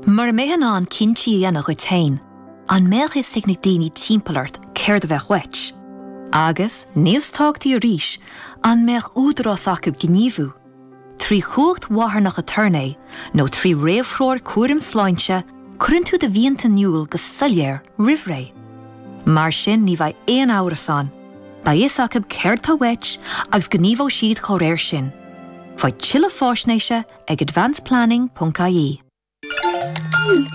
Mura mbeifeá in ann cinntí a dhéanamh dhuit féin, an mbeadh fhios ag na daoine timpeall ort céard a bheadh uait? Agus, níos tábhachtaí arís, an mbeadh údarás acu gníomhú, trí chumhacht mharthanach aturnae nó trí réamhthreoir cúraim sláinte, cuireann tú do mhianta in iúl go soiléir roimh ré. Mar sin ní bheidh aon amhras ann, beidh fhios acu céard atá uait agus gníomhóidh siad dá réir sin. Faigh tuilleadh faisnéise ag advanceplanning.ie.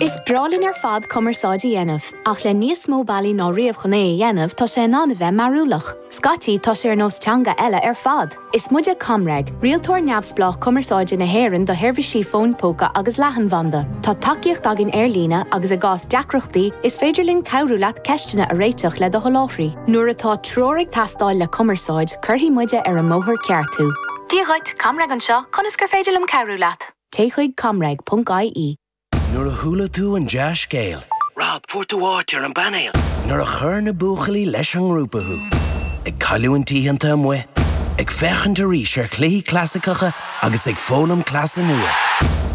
Is breá linn ar fad cumarsáid a dhéanamh, ach le níos mó bealaí ná riamh chun é a dhéanamh tá sé in ann a bheith mearbhlach. Scaití tá sé ar nós teanga eile ar fad! Is muide ComReg, rialtóir neamhspleách cumarsáide na hÉireann do sheirbhísí fóin póca agus leathanbhanda. Tá tacaíocht againn ar líne agus i gcás deacrachtaí is féidir linn cabhrú leat ceisteanna a réiteach le do sholáthraí. Nuair atá treoir ag teastáil le cumarsáid, cuirfidh muide ar an mbóthar ceart thú. Dia dhuit, ComReg anseo, conas gur féidir liom cabhrú leat? Téigh chuig comreg.ie. Nuair a chuala tú an dea-scéal. Rob, fuair tú áit ar an bpainéal! Nuair a chuir na buachaillí leis an ngrúpa thú. Ag cailliúint oícheanta amuigh. Ag féachaint arís ar chluichí clasaiceacha agus ag foghlaim cleasa nua.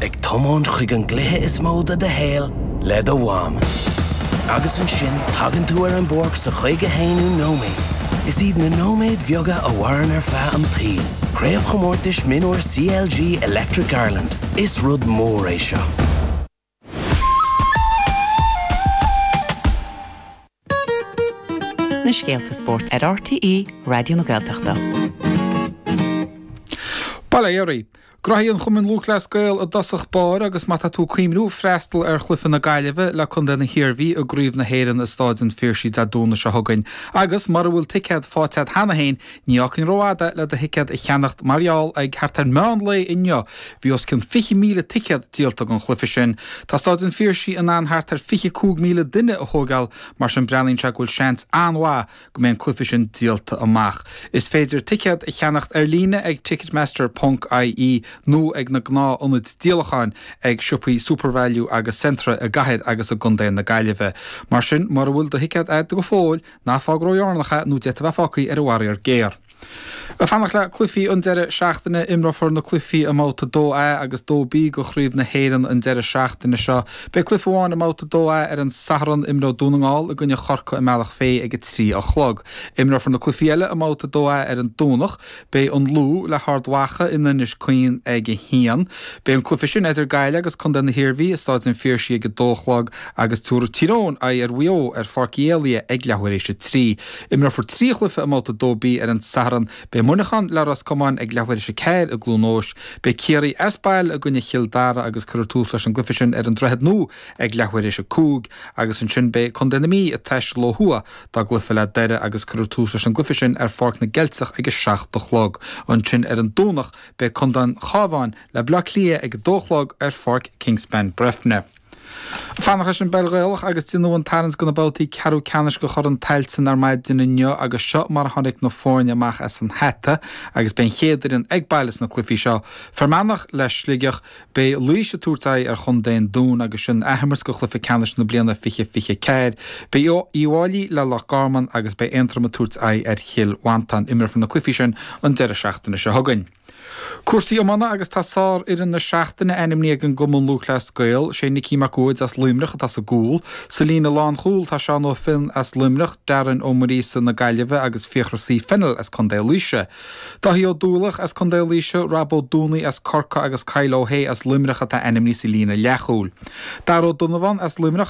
Ag tiomáint chuig an gcluiche is mó de do shaol le do mham. Agus ansin tagann tú ar an bpáirc sa chaoga haonú nóiméad. Is iad na nóiméid bheaga a mhaireann ar feadh an tsaoil, Craobhchomórtais Mionúir CLG Electric Ireland. Is rud mór é seo. na scéalta spóirt ar RTÉ Raidió na Gaeltachta. Bail ó Dhia oraibh, Gnóthaí an Chumainn Lúthchleas Gael i dtosach báire agus má tá tú ag cuimhniú freastal ar chluiche na Gaillimhe le Contae na hIarmhí i gCraobh na hÉireann i Stáid an Phiarsaigh Dé Domhnaigh seo chugainn agus mura bhfuil ticéad faighte agat cheana féin ní fhágfainn rófhada le do thicéad a cheannacht mar gheall ag thart ar meán lae inniu bhí os cionn 20,000 ticéad díolta don chluiche sin. Tá Stáid an Phiarsaigh in ann thart ar 25,000 duine a thóigeáil mar sin breathnaíonn sé go bhfuil seans an-mhaith go mbeidh an cluiche sin díolta amach. Is féidir ticéad a cheannacht ar líne ag ticketmaster ponc IE nó ag na gnáthionaid díolacháin ag siopaí Supervalu agus Centra i gCathair agus i gContae na Gaillimhe. Mar sin, mura bhfuil do thicéad agat go fóill, ná fág ródheireanach é nó d'fhéadfá a bheith fágtha ar an bhfaraor géar. Ag fanacht le cluichí an deireadh seachtaine, imreofar na cluichí i mBabhta 2A agus 2B de Chraobh na hÉireann an deireadh seachtaine seo. Beidh cluiche amháin i mBabhta 2A ar an Satharn, imreoidh Dún na nGall i gcoinne Chorcaigh i mBealach Féich ag a trí a chlog. Imreofar na cluichí eile i mBabhta 2A ar an Domhnach. Beidh an Lú le hArd Mhacha in Inis Caoin ag a haon. Beidh an cluiche sin idir Gaillimh agus Contae na hIarmhí i Stáid an Phiarsaigh ag a dó a chlog agus tabharfaidh Tír Eoghain aghaidh ar Mhaigh Eo ar Pháirc Uí Éalaigh ag leathuair éis a trí. Imreofar trí chluiche i mBabhta 2B ar an Satharn. Beidh Muineachán le Ros Comáin ag leathuair tar éis a ceathair i gCluain Eois. Beidh Ciarraí as baile i gcoinne Chill Dara agus cuirfear tús leis an gcluiche sin ar an Droichead Nua ag leathuair tar éis a cúig agus ansin beidh Contae na Mí ag taisteal ó thuaidh dá gcluiche le Doire agus cuirfear tús leis an gcluiche sin ar Pháirc na gCeilteach ag a seacht a chlog. Ansin ar an Domhnach beidh Contae an Chábháin le Baile Átha Cliath ag a dó a chlog ar Pháirc Kingspan, Breifne. Fanacht leis an bPeil Ghaelach agus déanadh an tarraingt do na babhtaí ceathrú ceannais de Chorn Tailteann ar maidin inniu agus seo mar a tháinig na foirne amach as an hata agus beidh an chéad fhoireann ag baile sna cluichí seo, Fear Manach le Sligeach, Beidh Laois ag tabhairt aghaidh ar chontae an Dúin agus sin athimirt de chluiche ceannais na bliana 2024, Beidh Uíbh Fháilí le Loch Garman agus beidh Aontroim ag tabhairt aghaidh ar Chill Mhantáin. Imreofar na cluichí sin an deireadh seachtaine seo chugainn. Cúrsaí iomána agus tá sárfhoireann na seachtaine ainmnithe ag an gCumann Lúthchleas Gael. Sé Nicky Mac Uaid as Luimneach atá sa gcúl. Sa líne lánchúil tá Seán Ó Finn as Luimneach, Darren Ó Muiríosa na Gaillimhe agus Fiachra C. Fennell as Co. Laoise. Dáithí Ó Dúlach as Co. Laoise, Rob Ó Dúnaí as Corcaigh agus Kyle Ó hAodh as Luimneach atá ainmnithe sa líne leathchúil. Dara Ó Donnabháin as Luimneach agus.